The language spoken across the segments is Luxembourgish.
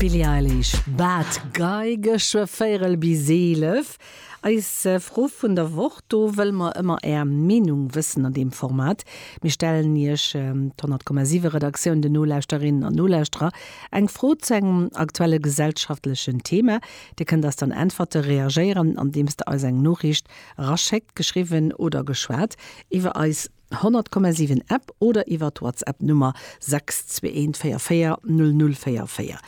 D'Billie Eilish, Bad Guy, geschwë véierel bis eelef. Eis Fro vun der Woch, do wëlle mer ëmmer Är Meenung wëssen an deem Format. Mir stellen Iech, d'Honnertkommasiwwe Redaktioun, den Nolauschterinnen an Nolauschterer, eng Fro zu engem aktuelle gesellschaftlechen Thema. Dir kënnt eis dann äntwerte, reagéieren, andeems Der eis eng Noriicht eraschéckt, geschriwwen oder geschwat, iwwer eis. 100,7 App oder iwwer d'Whatsapp Nummer 621440044.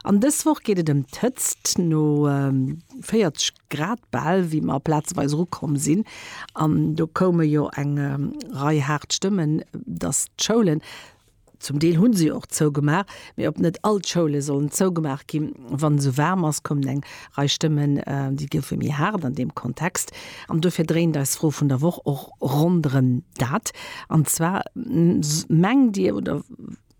An dës Woch geet et ëm d'Hëtzt no 40 Grad bal, wéi mer plazeweis erukomm sinn. An do koume jo eng Rei haart Stëmmen, datt d'Schoulen Zum Deel hunn se jo och zougemaach, mee ob net all d'Schoule sollen zougemaach ginn, wann esou waarm ass, kommen eng Rei Stëmmen, déi goufe méi haart an deem Kontext. An dofir dréint eis Fro vun der Woch och ronderëm dat, an zwar, Mengt Dir oder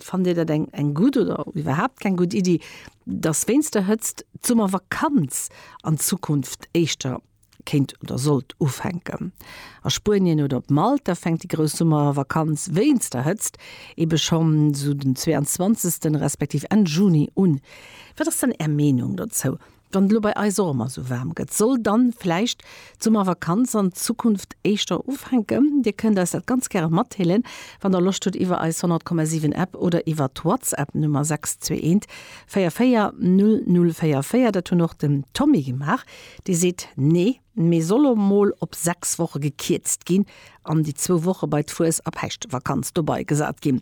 fannt Dir dat eng gutt oder iwwerhaapt keng gutt Iddi, datt wéinst der Hëtzt d'Summervakanz an Zukunft éischter kéint oder sollt ufänken. A Spuenien oder op Malta fänkt déi grouss Summervakanz wéinst der Hëtzt ebe schonn esou den 22. respektiv Enn Juni un. Wat ass dann Är Meenung dozou? Wann et elo bei eis och ëmmer esou waarm gëtt, soll dann vläicht d'Summervakanz an Zukunft éischter ufänken? Dir kënnt eis dat ganz gäre matdeelen, wann der Loscht hutt, iwwer eis 100,7 App oder iwwer d'Whatsapp Nummer 621 44 0044. Dat hunn och den Tommy gemaach. Dir seet nee, mee soll lo mol op 6 Woche gekierzt ginn an déi zwou Woche bei d'Fues a Päischtvakanz dobai gesat ginn.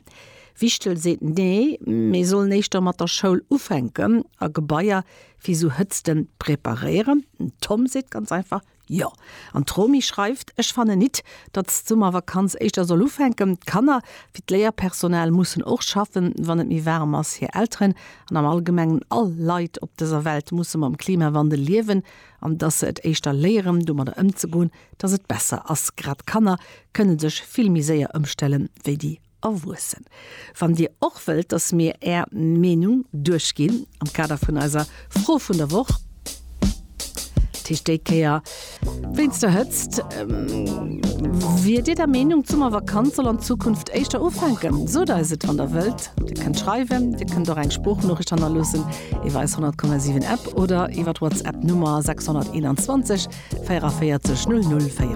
Wichtel seet nee, mee sollen éischter mat der Schoul ufänken a Gebaier fir sou Hëtzte preparéieren. Den Tom seet ganz einfach jo. An d'Romi schreift, ech fannen nit, datt d'Summervakanz éischter soll ufänken. D'Kanner wéi d'Léierpersonal mussen och schaffen, wann et méi waarm ass. Hir Elteren an am Allgemengen all Leit op dëser Welt musse mam Klimawandel liewen an dass se et éischter léieren domadder ëmzegoen, dass et besser ass. Grad Kanner kënne sech vill méi séier ëmstelle wéi déi Erwuessen. Wann Dir och wëllt, dass mir Är Meenung duerchginn am Kader vun eiser Fro vun der Woch, Tisch déi Kéier wéinst der Hëtzt. Wier Dir der Meenung, d'Summervakanz soll an Zukunft éischter ufänken? Sot eis et, wann der wëllt. Dir kënnt schreiwen, Dir kënnt och eng Sproochnoriicht hannerloossen iwwer eis 100,7 App oder iwwer d'Whatsapp Nummer 621 44 00 44.